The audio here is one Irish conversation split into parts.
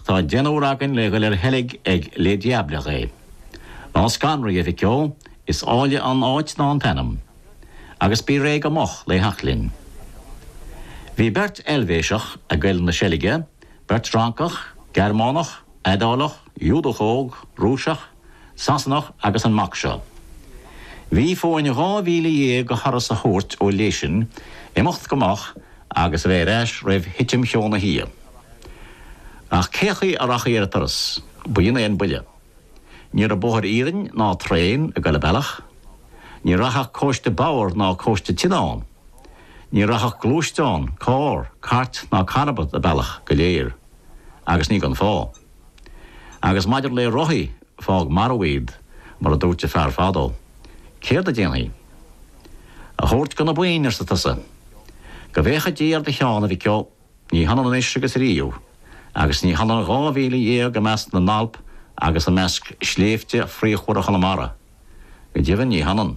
Tá deichniúr againn le dhul ar sheilg ag Les Diablerets. Ná scanraigh, a Mhic Ó, is áille an áit ná an t-ainm. Agus bí réidh go moch lé theacht linn. Bhí beirt Eilvéiseach ag goil na seilge, beirt Fhrancach, Gearmánach, Iodálach, Iúdach óg, Rúiseach, Sasanach agus an mac seo. Bhí fúinn dhá mhíle dhéag go thuras a thabhairt ó Leysin, imeacht go moch agus a bheith ar ais roimh thitim cheo na hoíche. Ach cén chaoi a rachfaí ar an turas, b'in é an buille. Ní raibh bóthar iarainn ná traein ag goil an bealach. Ní rachadh cóiste bodhar ná cóiste tine ann. Ní rachadh gluaisteán, carr, cairt ná carbad an bealach go léir. Agus ní gan fáth. Agus maidir le rothaí, fág marbh iad, mar a dúirt an fear fadó. Céard a déanfaí? A thabhairt go na boinn, arsa tusa. Go bhféacha Dia ar do cheann, a mhic ó, ní hionann anois agus riamh, agus ní hionann dhá mhíle dhéag i measc na nAlp agus i measc shléibhte fraochmhara Chonamara. Go deimhin ní hionann.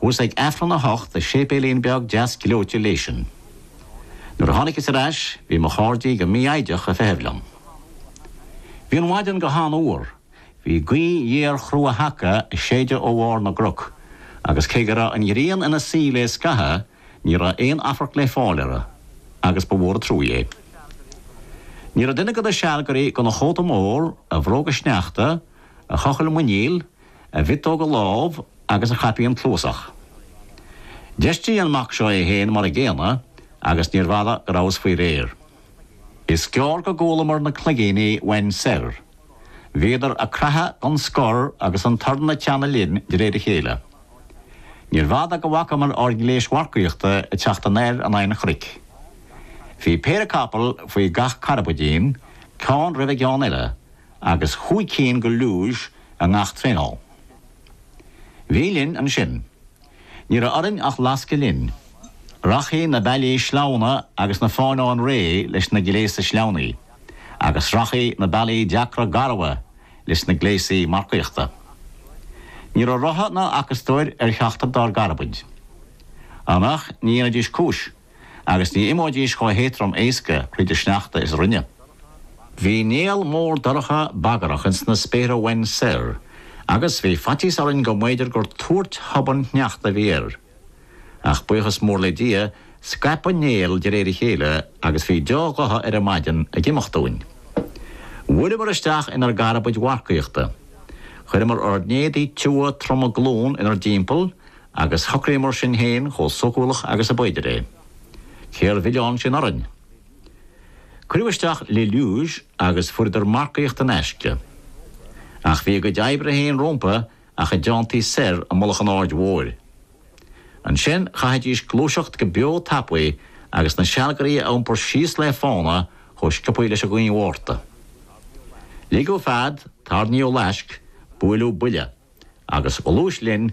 Chuas ag Aifreann a hocht i séipéilín beag deas gleoite Leysin. Nuair a tháiniceas ar ais bhí mo chairdí go mífhoighdeach a feitheamh liom. Bhí an mhaidean go han fhuar, bhí gaoth ghéar chrua sheaca a séideadh ó bharr na gcroc, agus cé go raibh an ghrian ina suí lé scathamh ní raibh aon afarc lé fáil orra, agus ba mhór a truaigh é. Ní raibh duine go na sealgairí gan a chóta mór, a bhróga sneachta, a chochall muiníl, a mhiotóga lámh agus a chaipín cluasach. D'fheistigh an mac seo é féin mar an gcéanna agus níorbh fhada go rabhas faoi réir. Is gearr go gcualamar na cloigíní uainn soir. Bhíodar a craitheadh gan scor agus an torann a teannadh linn de réir a chéile. Níorbh fhada go bhfacamar ár ngléis mharcaíochta ag teacht anoir in aghaidh an chnoic. Bhí péire capall faoi gach carbaidín, ceann roimh an gceann eile, agus chúig cinn go luges, i ngach traîneau. Bhí linn ansin. Ní raibh orainn ach lascadh linn. Rachfaí na bealaí sleamhna agus na fánáin réidhe leis na gléasa sleamhnaithe, agus rachfaí na bealaí deacra garbha leis na gléasaí marcaíochta. Ní raibh rotha ná acastóir ar cheachtar dár gcarbaid. An ea nach ndéanfaidís cúis? agus ní imeoidís chomh héadtrom éasca thríd an sneachta is a rinne. Bhí néal mór dorcha bagrach ins na spéartha uainn soir, agus bhí faitíos orainn go mb'fhéidir gur tuairt thobann shneachta a bhí air. Ach buíochas mór le Dia, scaip an néal de réir a chéile agus bhí dea-ghotha ar an maidin ag imeacht dúinn. Bhuaileamar isteach inar gcarbaid mharcaíochta. Chuireamar ár n-éadaí tiubha troma glún inar dtimpeall Agus shocraíomar sinn féin chomh sócúlach agus ab fhéidir é. Cér mhilleán sin orainn? Cuireadh isteach Le Luge agus fuaireadar marcaíocht in aisce. Ach bhí a gcuid oibre féin rompu ach a dteanntaí soir i mullach an Aird Mhóir. Ansin chaithfidís gluaiseacht go beo tapaidh agus na sealgairí a iompar síos le fána chomh sciobtha leis an ghaoth Mhárta. Ligeadh fead, tairníodh laisc, buaileadh buille. Agus ghluais linn